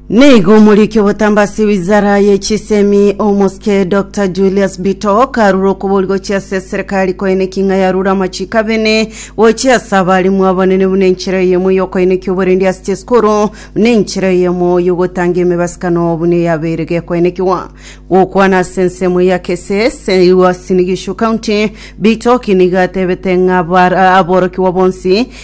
Nigo omoriki obotamba ase wizara ye chisemi omosike Dr Julius Bito karure okobori gochia ase serikali koene king'a yarure amachiko abene gochia ase abarimu abanene buna enchera eyemo yokoenekia oborendi ase chisukuru buna enchera eyemo yogotanga emebasukano buna eyabeire gekoenekiwa gokwana ase ensemo ya Kesese Uasin Gishu County Bitoki nigo atebete ng'a abara- aborokigwa bonsi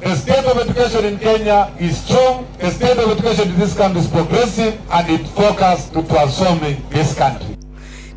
The state of education in Kenya is strong, the state of education in this country is progressive and it focus to transforming this country.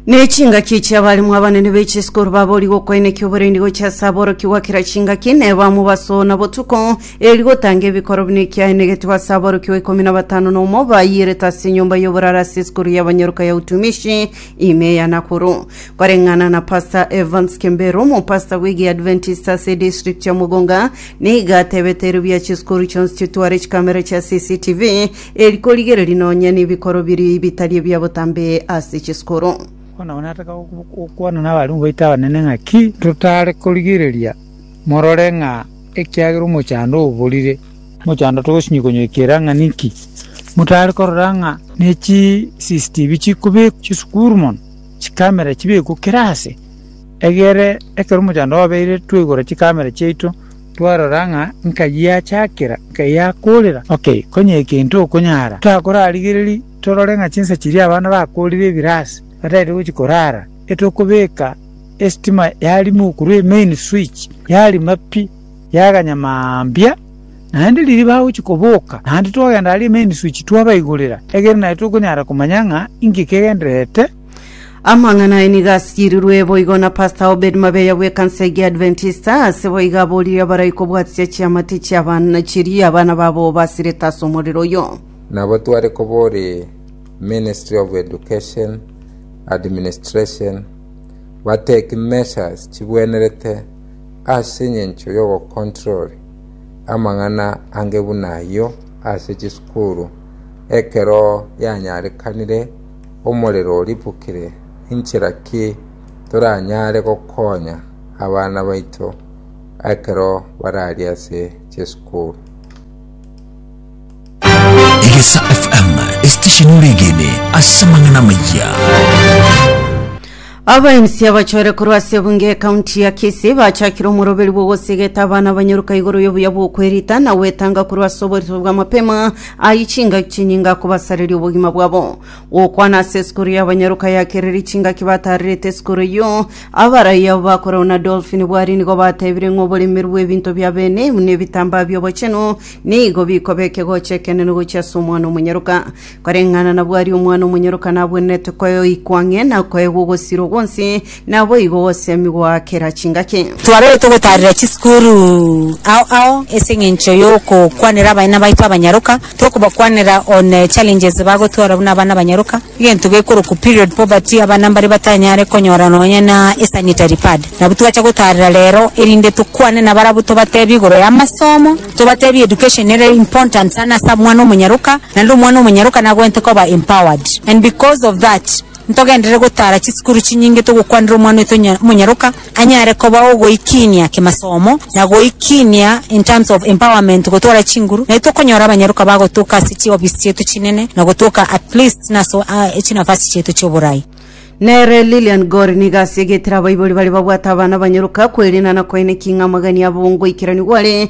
Ne chingaki chi'abalimu abanene b'echisukuru baboorigwe okoenekia oborendi gochia ase aboroki gwa kera chingaki, nebamwe basoona botuko, eri gotanga ebikoro buna ekiaenegetwe ase aboroki wa ikomi na batano na omo bayiirete ase enyomba y'oboraro ase esukuru y'abanyaruka ya Utumishi Ime ya Nakuru. Koreng'ana na Pastor Evans Kembero, omopastor bw'egiadventist ase edistrict ya Mugunga, nigo atebete erio bia chisukuru chionsi chitware chikamera chia CCTV eri korigereria nonya nebikoro biria bitari ebia botambe ase chisukuru. Bono abwo nataka gokwana n'abarimu baito abanene ng'a ki totare korigereria morore ng'a ekiagera omochando oborire. Mochando togosinyia konyoikera ng'a ninki motare korora ng'a ne chiCCTV chikobekwa chisukuru mono, chikamera chibekwe kera aase, egere ekero omochando obeire twaigora chikamera chiaito twarora ng'a nkai yachakera, nkai yakorera. Ok, konya egento okonyara torakorarigereria torore ng'a chinsa chiria abana bakorire ebire aase batagete gochia korara, etokobeka esitima yarimo korwa emain switch yarima pi. Yaganya mambia, naende riria bagochia koboka, naende twagenda aria Emeniswichi twabaigorera, egere naye tokonyara komanya ng'a inki kegendererete. Amang'ana aye nigo asirirwe boigo na Pastor Obed Mabeya bw'ekansa egia Adventista, ase boigo aboririe abarai kobwatisia chiamate chi'abana chiria abana babo basirete ase omorero oyo. Nabo tware kobori Ministry of Education, Administration, bateki measures chibwenerete ase engencho y'ogocontrol amang'ana ange buna ayio ase chisukuru ekero yanyarekanire omorero oribukire, inchera ki toranyare gokonya abana baito ekero barari ase chisukuru? Egesa FM, esitesheni oregene ase amang'ana amayia. Abaenisi abachore korwa ase ebunge ekaunti ya Kisii bachakire omoroberi bw'ogosegeta abana abanyoruka igoro y'obuya bw'okwerita na gwetanga korwa ase oborito bwa mapema ayi chingaki chinyinga kobasareria obogima bwabo. Gokwana ase esukuru y'abanyoruka ya Kereri chingaki batarerete esukuru eyio, abarai abo bakorau na Dolphin Bwari nigo batebire ng'a oboremeru bw'ebinto bia bene buna ebitambaa bi'obochenu Nigo bikoba ekegocha ekenene gochia ase omwana omonyaroka, koreng'ana nabwo aria omwana omonyaroka nabwenerete koyoikwa ang'e na koegwa ogosirwa gwonsi, naboigo gosemigwa goa kera chingaki. Twarorire togotaarera chisukuru ao ao ase eng'encho y'okokwanera abana baito abanyaroka, tokobakwanera on challenges bagotwara buna abana abanyaroka. Egento gekorokwa period poverty, abana mbare batanyare konyora nonya na esanitary pad. Nabwo twacha gotarera rero erinde tokwane nabarabwo tobatebie igoro yamasomo, tobatebie education nere important sana ase omwana omonyaroka, naende omwana omonyaroka nagwenerete koba empowered. And because of that, ntogenderere gotara chisukuru chinyinge togokwanera omwana oito onya omonyaroka. anyare koba ogoikinia kemasomo na goikinia in terms of empowerment gotwara chinguru naye tokonyora abanyaruka bagotoka ase chi office chiaito chinene na gotoka at least na ase uh, chinafasi chiaito chioborai. Nere Lilian Gore nigo asiegete abaibori baria babwate abana abanyaruka kwerina na koeneki ng'a amagania abo ngoikeraniwa are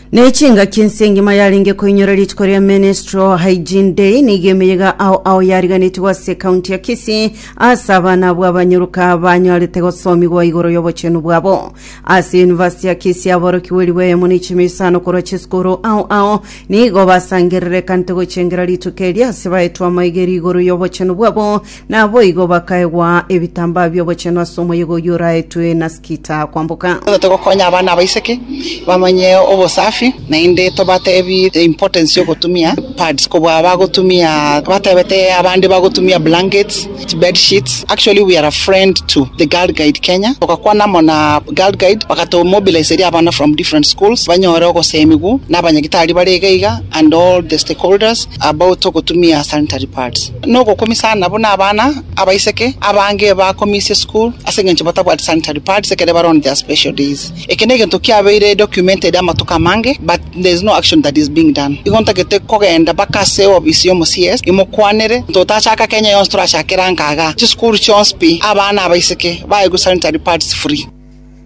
Ne chingaki ense engima yarenge koinyora rituko ria Menstrual Hygiene Day nigo emeyega ao ao yariganetigwe ase ekaunti ya Kisii ase abana abwo abanyoruka banyarete gosomigwa igoro y'obochenu bwabo. Ase University ya Kisii aborokigwe ribu eyemo na ichimi isano korwa chisukuru ao ao nigo basangerere ekante gochengera rituko eri ase baetwe amaegeri igoro y'obochenu bwabo Naboigo bakaegwa ebitambaa bi'obochenu ase omoyega oyio oraetwe na Skita kwamboka. Nigo togokonya abana abaiseke bamanye obosafi, naende tobatebie the importance y'ogotumia pads kobua bagotumia, batebete abande bagotumia blankets, bedsheets. Actually we are a friend to the Girl Guide Kenya, togakwana amo na Girl Guide bagato mobiliseria abana from different schools banyore ogosemigwa na abanyagitari bare iga iga and all the stakeholders about ogotumia sanitary pads. nogokumisa aana buna abana abaiseke abange bakumisia esukuru ase engencho batabwati sanitary pads ekero bare on their special days. Eke negento kiabeire documented amatuko amange but there is no action that is being done. Igo ntagete kogenda mpaka ase ofisi yomo CS imokwanere ntotachaka Kenya yonsi torachakere angaga chisukuru chionsi pi abana abaiseke baegwe sanitary pads free.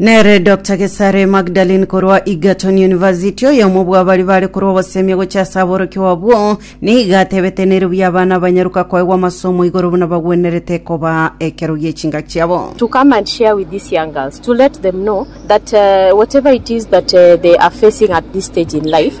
Nere Dr Gesare Magdalene korwa Egerton University, oyomo bw'abari bare korwa obosemia gochia ase aborokigwa abwo, nigo atebete nere buya abana abanyaruka koegwa amasomo igoro buna bagwenerete koba ekero gi'echingaki chiabo. to come and share with these young girls to let them know that uh, whatever it is that uh, they are facing at this stage in life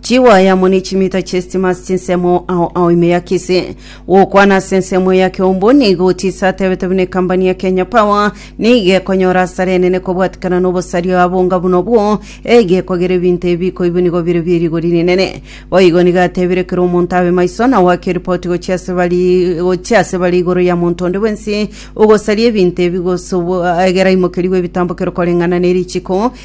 Chiwaya amo ne chimita chi'esitimasi chinsemo ao ao ime ya Kisii. Gokwana ase ensemo eye ya Keumbu nigo Otis atebete buna ekambani ya Kenya Power nigo ekonyora asara enene kobwatikana n'obosaria abonga buna obwo, egekogera ebinto ebi bikoigwe nigo bire bierigori rinene. Boigo nigo atebire kera omonto abe maiso na goaka eripoti gochia ase bare gochia ase bare igoro ya monto onde bwensi ogosaria ebinto ebi gose obo egera aimokerigwe ebitambo kero koreng'ana ne richiko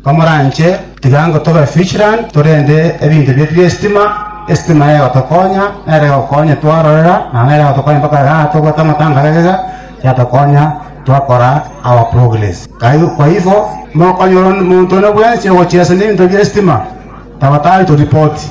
Komoranche, tiga ngotobe Fishland torende ebinto bietu bi'esitima. Esitima egotokonya, nere egokonya twarorera, na nere egotokonya mpaka igaa tobwate amatango aya iga, yatokonya twakora our progress. Kai- Kwaibo, mokonyora omonto one bwensi ogochia ase nebinto bi'esitima, taba tari toripoti.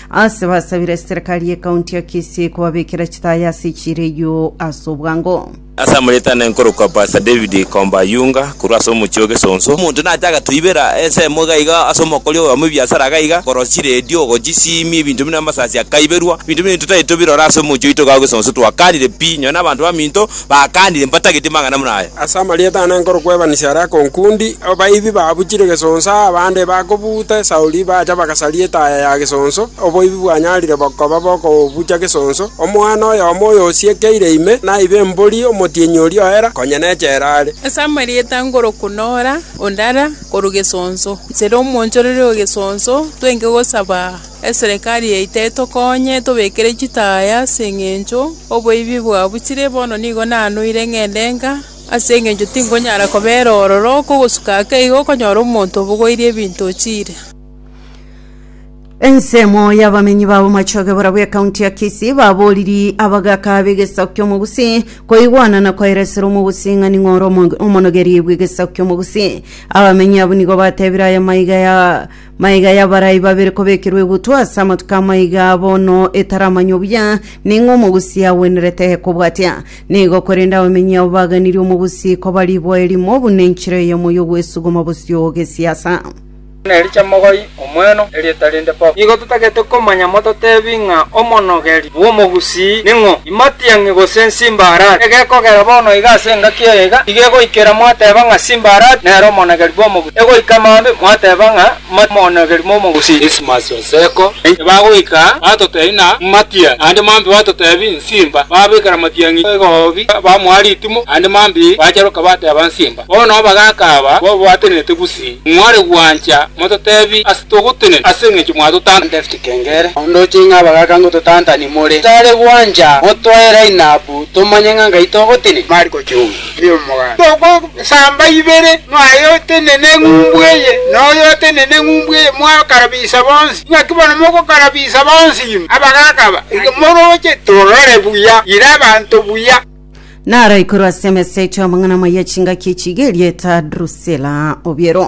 Ase basabire serikali ye county ya Kisii kobabekera chitaya ase chireio ase obwango. Ase amoretane nkorokwa Pastor David Kombayunga korwa ase omochie o Gesonso. Omonto nache agatoibera ensemo iga iga ase omokori oyomo bw'ebiasara iga iga, korora chiredio, gochisiimia, ebinto buna amasasi akaiberwa. Ebinto buna ebio totari tobirore ase omochie oito iga o Gesonso, twakanire pi, nonya na abanto baminto bakaanire mbatageti mang'ana buna aya. Ase amarieta ane nkorokuebanisia aria akonkundi, abaibi babuchire gesonso aa abande bakobuuta esauri bacha bagasaria etaya ya gesonso, oboibi bwanyarire bokoba bokobucha gesonso. Omwana oyomo oyosiekeire ime naibe embori omotienyi oria oera, konya nechera are. Ase amarieta nkoroku nora, ondara, korwa gesonso, nsera omoonchoreri o gesonso, twenge gosaba. Eserekari yaito etokonye etobekere chitaya ase engencho oboibi bwabuchire, bono nigo nanoire ng'ende enka, ase engencho tingonyara kobera ororo oko ogosuka ake igo okonyora omonto obogoirie ebinto ochiire. Ensemo y'abamenyi ba Bomachoge borabwo ekaunti ya Kisii babooriri abagaaka b'egesaku ki'Omogusii koigwana na koeresera Omogusii ng'a ning'o ore omo- omonogeri bw'egesaku ki'Omogusii. Abamenyi abwo nigo bateebire aya maiga ya Maiga y'abarai babere kobekerwa egutwa ase amatuko amaiga bono etaramanywa buya ning'o omogusi agwenerete kobwatia. Nigo korende abamenyi abo baganirie omogusi koba riboa erimo buna enchera eyemo y'ogwesuguma bosio gesiasa. Buna Elisha mogoy omweno, erieta rinde Pop. Nigo totagete komanya mototebi ng'a omonogeri bw'omogusi ning'o. Imatiang'i gose Nsimbaarati, egekogera bono iga ase engaki eye iga, iga egoikera mwateba ng'a Simbaarati nere omonogeri bw'omogusi, egoika maambia mwateba ng'a Matiang'i omonogeri bw'omogusi. Dismas Oseko, Naintwe bagoika batotebi ng'a Matiang'i, naende maambia batotebi Nsimba, babekera Matiang'i egoobi, bamoa ritumo, naende maambia bacharoka bateba Nsimba. Bono abagaaka aba babatenenete bosii, mware gwancha mototebi ase togotenena ase engencho mwatotanta. David Kengere, Ondoche ng'a abagaaka ngototantani more tare gwancha motwae line up tomanye ng'a ngai togotenena. Mariko Chunga, Erio omoganda togosamba ibere mwaye otenene eng'umbu eye na oye otenene eng'umbu eye mwakarabisa bonsi. Ing'aki bono mogokarabisa bonsi ime abagaaka aba iga moroche torore buya ire abanto buya. Naro ikorwa ase emesa etio amang'ana amaya chingaki chiga erieta Drusila obiero.